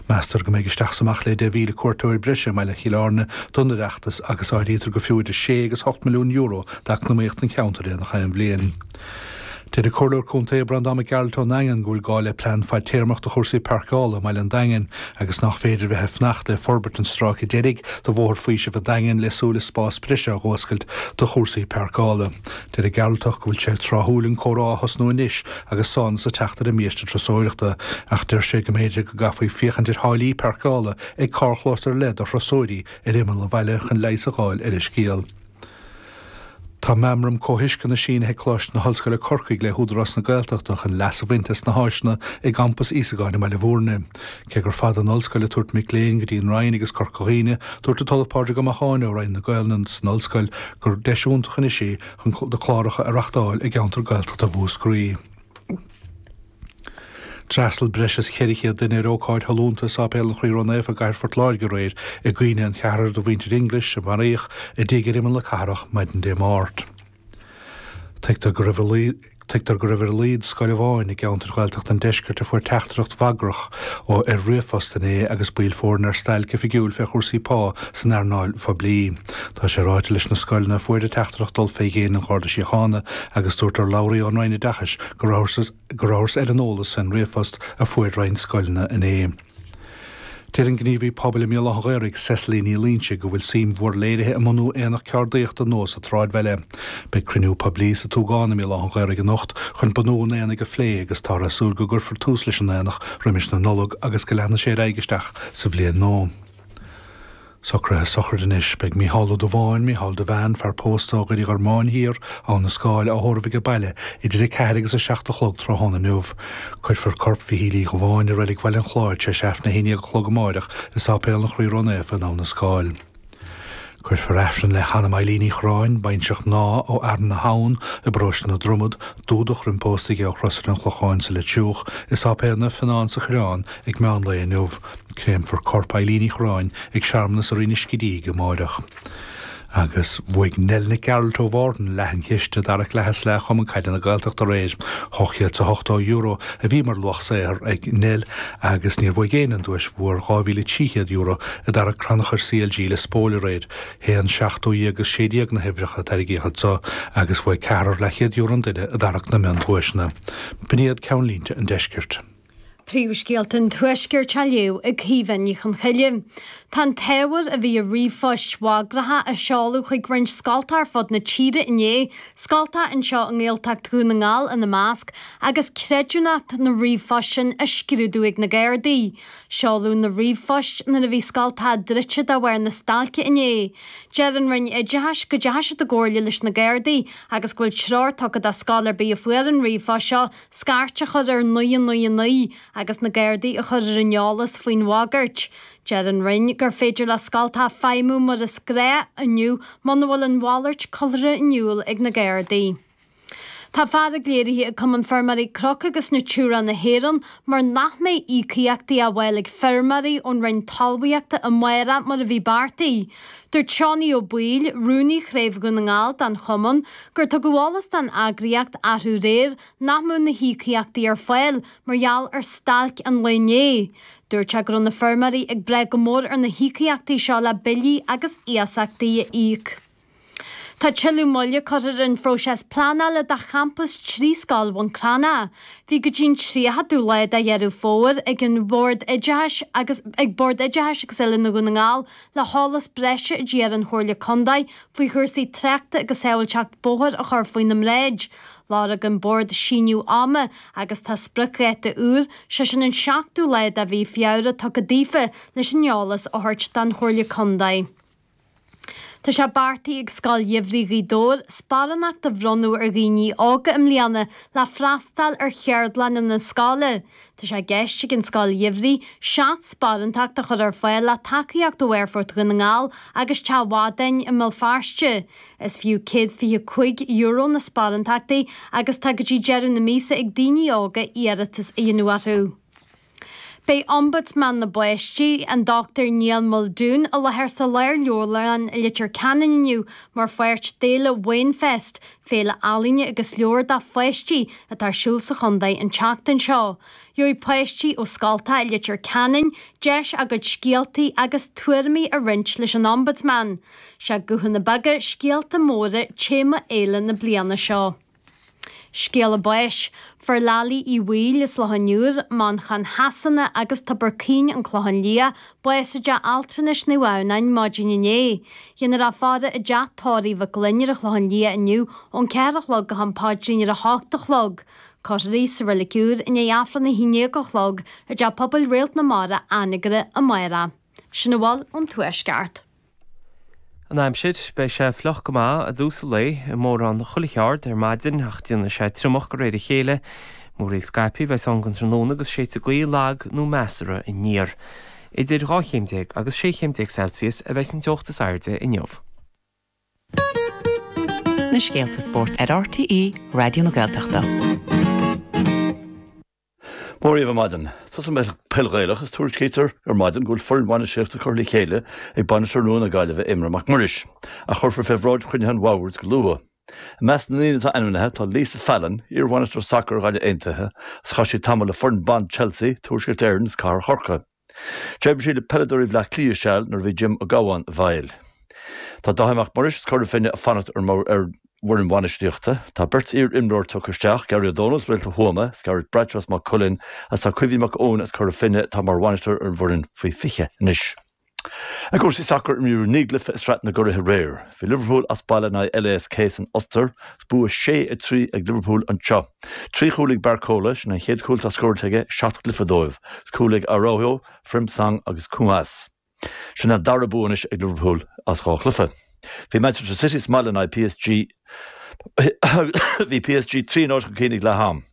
Meastar go mbeidh isteach is amach le deich mhíle cuairteoir breise i mbaile Chill Airne don Oireachtas agus áirítear gur fiú idir sé agus ocht milliún euro d'eacnamaíocht an cheantair i ngach aon bhliain. Deir an Comhairleoir Contae Breandán Mac Gearailt ón nDaingean go bhfuil gá le plean fadtéarmach do chúrsaí páirceála i mbaile an Daingin agus nach féidir a bheith ag fanacht le forbairt an stráice deiridh de Bhóthar Faoisimh an Daingin le súil is spás breise a dh'fhuascailt do chúrsaí páirceála. Deir an Gearaltach go bhfuil sé tráthúil an comhrá a thosnú anois agus sámhnas ag teacht ar an mbiaiste trusóireachta, ach deir sé go mb'fhéidir go gcaithfí féachaint ar tháillí páirceála ag carrchlós ar leith do thrusóirí ar imeall an bhaile chun leigheas a dh'fháil ar an scéal. Tá meamram comhthuisceana sínithe ag Coláiste na hOllscoile Corcaigh le hÚdarás na Gaeltachta chun leas a bhaint as na háiseanna i gcampas Íosagáin i mBaile Mhúirne. Cé gur fada an ollscoil ag tabhairt mic léinn go dtí an Rinn agus Corca Dhuibhne, dúirt an tOllamh Pádraig Ó Macháin ó Roinn na Gaelainne san ollscoil gur deis iontach anois í chun na cláracha a reachtáil i gceantar Gaeltachta Mhúscraí. D'fhreastal breis is 400 duine ar ócáid shollúnta i Sáipéal an Chroí Ró-Naofa i gcathair Phort Láirge aréir i gcuimhne an cheathrair de mhuintir English a maraíodh i dtigh ar imeall na cathrach maidin Dé Máirt. Tuigtear go raibh ar a laghad scoil amháin i gceantar Ghaeltachta an Deiscirt a fuair teachtaireacht bhagrach ó ar ríomhphost inné agus baill foirne ar stailc oifigiúil fé chúrsaí pá san earnáil phoiblí. Tá sé ráite leis na scoileanna a fuair an teachtaireacht dul fé dhéin an Gharda Síochána agus dúirt urlabhraí ón Roinn Oideachais go rabhthars ar an eolas fén ríomhphost a fuair roinnt scoileanna inné. Deir an gníomhaí pobail i mBéal Átha an Ghaorthaidh, Cecily Ní Loingsigh, go bhfuil suim mhór léirithe i mbunú aonach ceardaíochta nua sa tsráidbhaile. Beidh cruinniú poiblí sa tSúgán i mBéal Átha an Ghaorthaidh anocht chun bunú an aonaigh a phlé agus táthar ag súil go gcuirfear tús leis an aonach roimis na Nollag agus go leanfaidh sé ar aghaidh isteach sa bhliain nua. Socruithe sochraide anois. Beidh Mícheál Ó Dubháin, Mícheál Devane, fear pósta ó Dhoire Uí Ghormáin Thiar, Abha na Scáil á thórramh aige baile idir a ceathair agus a seacht a chlog tráthnóna inniu. Cuirfear corp Mhichíl Uí Dhubháin i reilig Bhaile an Chláir tar éis Aifreann a haon déag a chlog amáireach i Sáipéal an Chroí Ró-Naofa in Abha na Scáil. Cuirfear Aifreann le hanam Eilín Uí Chorráin, baintreach mná ó Fhearann na hAbhann i bparóiste na Dromad, Dúdach, roim pósadh dhi ó Chrosaire an Chlocháin sa Leitriúch, i Sáipéal Naomh Fionán sa Choireán ag meán lae inniu. Créamfar corp Eilín Uí Chorráin ag searmanas i Rinn an Scidígh amáireach. Agus bhuaigh Nell Nic Gearailt ó Mhárthain leath an chiste i dtarrac leath is leath Chumann Caide na Gaeltachta aréir. €280 a bhí mar luach saothair ag Nell agus níor bhuaigh éinne an duais mhór €2,300 i dtarrac crannchur CLG Lios Póil aréir. Haon, seacht, dó dhéag agus sé déag na huimhreacha a tarraingíodh anso agus bhuaigh ceathrar leathchéad euro an duine i dtarrac na mion-duaiseanna. B'in iad ceannlínte an deiscirt. Príomhscéalta an Tuaiscirt á léamh ag Caoimhe Ní Chonchoille. Tá an t-ábhar a bhí i ríomhphoist bhagracha a seoladh chuig roinnt scolta ar fud na tíre inné, scolta anseo i nGaeltacht Dhún na nGall ina measc, agus creidiúnacht na ríomhphost sin á scrúdú ag na Gardaí. Seoladh na ríomhphoist nuair a bhí scolta druidte de bharr na stailce inné. Deir an Roinn Oideachais go dteachaigh siad i gcomhairle leis na Gardaí agus go bhfuil treoir tugtha do scoil ar bith a fuair an ríomhphost seo scairt a chur ar 999 agus na Gardaí a chur ar an eolas faoin bhagairt. Deir an Roinn gur féidir le scolta feidhmiú mar is gnách inniu muna bhfuil a mhalairt curtha in iúl ag na Gardaí. Tá fearg léirithe ag Cumann Feirmeoirí Cnoc agus Natura na hÉireann mar nach mbeidh íocaíochtaí á bhfáil ag feirmeoirí ón Roinn Talmhaíochta amárach mar a bhí beartaithe. Dúirt Seánie Ó Baoill, rúnaí Chraobh Dhún na nGall den chumann, gur tugadh eolas don eagraíocht arú aréir nach mbeadh na híocaíochtaí ar fáil mar gheall ar stailc an lae inné. Dúirt sé go raibh na feirmeoirí ag brath go mór ar na híocaíochtaí seo le billí agus iasachtaí a íoc. Tá tuilleadh moille curtha ar an phróiseas pleanála do champas trí scoil Bhun Cranncha. Bhí go dtí'n 30ú lá de Dheireadh Fómhair ag an Bhord Oideachais agus ag Bord Oideachais agus Oiliúna Dhún na nGall le heolas breise a d'iarr an Chomhairle Contae faoi chúrsaí tráchta agus sábhailteacht bóthair a chur faoina mbráid. Lorg an Bord síneadh ama agus tá spriocdháta úr, sé sin an 7ú lá de mhí Feabhra tugtha daofa leis an eolas a thabhairt don Chomhairle Contae. Tá sé beartaithe ag Scoil Gheimhridh Ghaoth Dobhair sparánacht a bhronnadh ar dhaoine óga i mbliana le freastáil ar Cheardlanna na Scoile. Tá sé i gceist ag an Scoil Gheimhridh seacht sparántacht a chur ar fáil le tacaíocht ó Aerfort Dhún na nGall agus Teach Mhadáin i mBéal Feirste. Is fiú €125 na sparántachtaí agus tá go dtí deireadh na míosa ag daoine óga iarratas a dhéanamh orthu. Beidh Ombudsman na bPáistí, an Dr Niall Muldoon, i láthair sa Lárleabharlann i Leitir Ceanainn inniu mar pháirt d'fhéile Wainfest, Féile ealaíne agus leabhar do pháistí atá ar siúl sa chontae an tseachtain seo. Gheobhaidh páistí ó scolta i Leitir Ceanainn deis a gcuid scéaltaí agus tuairimí a roinnt leis an Ombudsman. Sé Guthanna Beaga, Scéalta Móra téama fhéile na bliana seo. Scéala Báis, fuair Lally Uí Bhaoill as Loch an Iúir, Manchain Shasana agus Tobar Caoin, An Clochán Liath, bás i dteach altranais Naomh Adhamhnáin maidin inné. Dhéanfar a faire i dteach tórraimh Mhic Fhloinn ar an Chlochán Liath inniu ón ceathair a chlog go ham paidrín ar a hocht a chlog. Cuirfear í sa reilig úr i ndiaidh Aifreann a haon dhéag a chlog i dTeach Pobail Réalt na Mara, Anagaire, amárach. Sin a bhfuil ón Tuaisceart. an aimsir. Beidh sé fliuch go maith i dtús an lae, i mórán chuile cheard, ar maidin, ach déanfaidh sé triomach de réir a chéile. Múraíl scaipthe a bheas ann den tráthnóna agus séidfidh gaoth lag nó measartha aniar. Idir dhá chéim déag agus sé chéim déag Celsius a bheas an teocht is airde inniu. na scéalta spóirt ar RTÉ Raidió na Gaeltachta. Mora dhaoibh ar maidin. Tús ag an bpeil Ghaelach is tuairiscítear ar maidin go bhfuil foireann bhainistíochta curtha le chéile ag bainisteoir nua na Gaillimhe, Éamonn Mac Muiris, a chuirfear fé bhráid chruinniú den Bhord go luath. I measc na ndaoine atá ainmnithe tá Lisa Fallon, iarbhainisteoir sacair Ghaillimh Aontaithe, agus chaith sí tamall le foireann ban Chelsea, Tuaisceart Éireann is Cathair Chorcaí. D'oibrigh sí le peileadóirí Bhleá Cliath seal nuair a bhí Jim Ó Gabháin i bhfeighil. Tá Dáithí Mac Muiris as Cora Finne ag fanacht ar an bhfoireann bhainistíochta. Tá beirt iar-imreoir tugtha isteach, Gary Ó Dónaill as Réalta Thuama is Gareth Bradshaw as Maigh Cuilinn agus tá Caoimhín Mac Eoin as Cora Finne atá mar bhainisteoir ar an bhfoireann faoi 20 anois. I gcúrsaí sacair, imríodh naoi gcluiche i Sraith na gCuraithe aréir. Bhí Liverpool as baile in aghaidh LASK san Ostair, Is bua sé a trí ag Liverpool anseo. Trí chúl ag Barcola, sin an chéad chúl atá scóráilte aige i seacht gcluiche dóibh. Is cúil ag Araujo, Frimpong agus Koumas. Sin an dara bua anois ag Liverpool as dhá chluiche. Bhí Manchester City sa mbaile in aghaidh PSG. Bhí PSG trí náid chun cinn ag leath-am.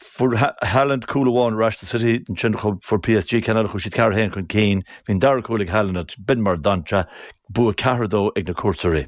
Fuair Haaland cúl amháin ar ais do City, ansin fuair PSG ceann eile chuaigh siad ceathair a haon chun cinn. Bhí an dara cúl ag Haaland, b'in mar d'fhan sé. Bua ceathair a dó ag na cuairteoirí.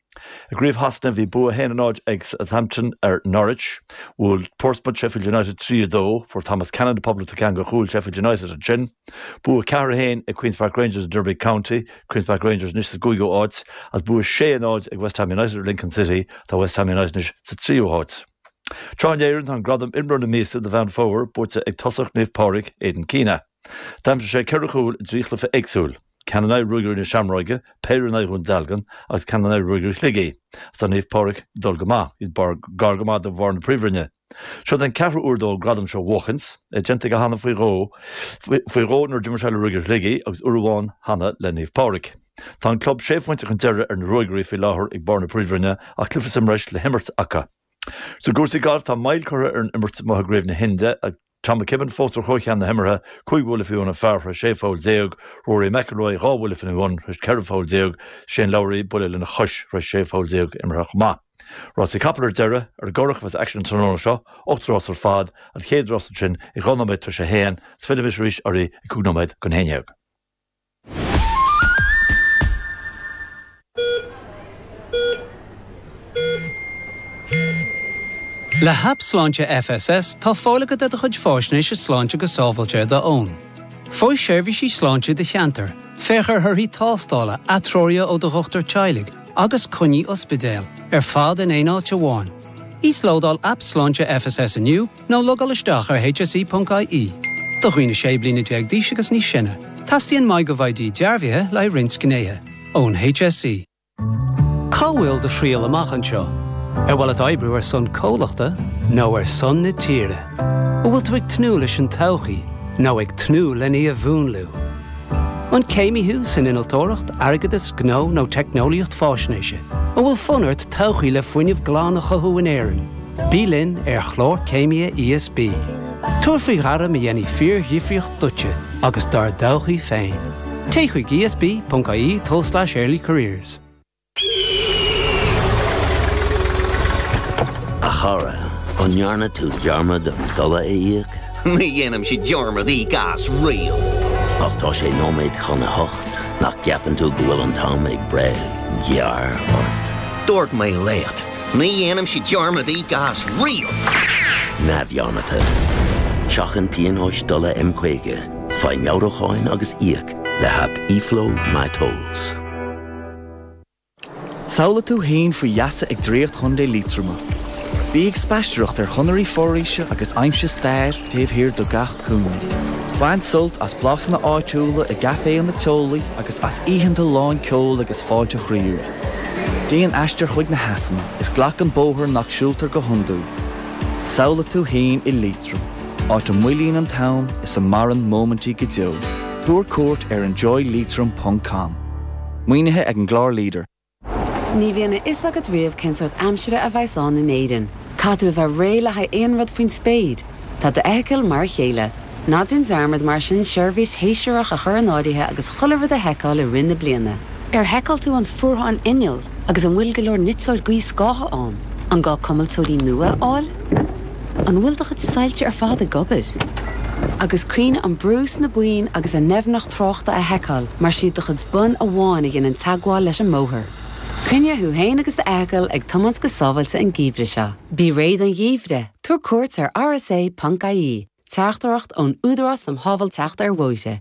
I gCraobh Shasana, bhí bua 1-0 ag Southampton ar Norwich. Bhuail Portsmouth Sheffield United 3, 2. Fuair Thomas Cannon na poblachta ceann de chúil Sheffield United ansin. Bua 4, 1 ag Queens Park Rangers ar Derby County, Queens Park Rangers anois sa gcúigiú áit, is bua 6, 0 ag West Ham United ar Lincoln City, tá West Ham United anois sa tríú háit. Sraith na hÉireann, tá an gradam Imreoir na Míosa do Mheán Fómhair buaite ag tosaí Naomh Pádraig, Aidan Keena. D'aimsigh sé ceithre chúil i dtrí chluiche éagsúil, ceann in aghaidh Ruagairí na Seamróige, péire in aghaidh Dhún Dealgan agus ceann in aghaidh Ruagairí Shligigh. Is tá Naomh Pádraig ag dul go maith, iad gar go maith do bharr na príomhroinne. Seod é an ceathrú uair dó an gradam seo a bhuachaint, é déanta aige cheana faoi, faoi dhó nuair d'imir sé le Ruagairí Shligigh agus uair amháin cheana le Naomh Pádraig. Tá an club sé phointe chun deiridh ar na Ruagairí faoi láthair ag barr na príomhroinne ach cluiche sa mbreis le himirt acu. Is i gcúrsaí gailf, tá moill curtha ar an imirt amuigh i gCraobh na hInde agus. Tom McKibbin fós ar chomhcheann na himeartha, 5 bhuille faoin bpar tar éis 16 pholl, Rory McIlroy, 2 bhuille faoi tar éis 14 pholl, Shane Lowry, buille lena chois tar éis 16 pholl imeartha chomh maith. Rásaí capall ar deireadh, ar an gCurrach a bheas an t-aicsean an tráthnóna seo, ocht rás ar fad, an chéad rás ansin ag dhá nóiméad tar éis a haon, is fillfidh mise arís oraibh ag cúig nóiméad don haon déag. Le hAip Sláinte FSS tá fáil agat ar do chuid faisnéise sláinte go sábháilte ar d'fhón. Faigh seirbhísí sláinte i do cheantar, féach ar thorthaí tástála, atreoruithe ó do dhochtúir teaghlaigh agus coinní ospidéil, ar fad in aon áit amháin. Íoslódáil Aip Sláinte FSS inniu! Ná logáil isteach ar hse.ie. Do dhaoine 16 bliana d'aois agus níos sine, teastaíonn MyGovID dearbhaithe le haghaidh roinnt gnéithe. Ón hse. Cá bhfuil do thriall amach anseo? Ar mhaith leat oibriú ar son comhlachta nó ar son na tíre? An bhfuil tú ag tnúth leis an todhchaí nó ag tnúth lena múnlú? An céimí thú san innealtóireacht, airgeadas, gnó nó teicneolaíocht faisnéise? An bhfuil fonn ort todhchaí le fuinneamh glan a chothú in Éirinn? Bí linn ar chlár Céimithe ESB. Tabhair faoi ghairm a dhéanfaidh fíordhifríocht duitse agus dár dtodhchaí féin. Téigh chuig esb.ie tul/earlycareers. A chara, an ndearna tú dearmad an dola a íoc? Ní dhéanaimse dearmad íoc as riamh! Ach tá sé nóiméad chun a hocht, nach gceapann tú go bhfuil an t-am ag breith gearr ort? Dúirt mé leat! Ní dhéanaimse dearmad íoc as riamh. neamhdhearmadta. Seachain pionóis dola M50, faigh meabhrúcháin agus íoc le haip eFlow My Tolls. Samhlaigh tú féin faoi gheasa ag draíocht Chontae Liatroma. Bí ag spaisteoireacht ar chonairí foraoise agus aimsigh stair taobh thiar de gach cúinne. Bain sult as blasanna áitiúla i gcaiféanna teolaí agus as oícheanta lán ceoil agus fáilte chroíúil. Déan aistear chuig na heasanna is glac an bóthar nach siúltar go hiondúil. Samhlaigh tú féin i Liatroim, áit a moillíonn an t-am is a maireann móimintí go deo. Tabhair cuairt ar enjoyleitrim ponc com. Maoinithe ag an gclár leader. Ní bhíonn a fhios agat riamh cén sórt aimsire a bheas ann in Éirinn. Caithfidh tú a bheith réidh le haghaidh aon rud faoin spéir. Tá d'fheithicil mar a chéile. Ná déan dearmad, mar sin, seirbhís shéasúrach a chur in áirithe agus chuile rud a sheiceáil i rith na bliana. Ar sheiceáil tú an fuarthán innill agus an bhfuil go leor niteora gaothscátha ann? An gá cuimilteoirí nua a fháil? An bhfuil do chuid soilse ar fad ag obair? Agus cuimhnigh an brú sna boinn agus a ndoimhneacht tráchta a sheiceáil mar is iad do chuid bonn amháin a dhéanann teagmháil leis an mbóthar. Coinnigh thú féin agus d'fheithicil ag tiomáint go sábháilte an geimhreadh seo. Bí réidh don gheimhreadh. Tabhair cuairt ar rsa ponc ie, Teachtaireacht ón Údarás um Shábháilteacht ar Bhóithre.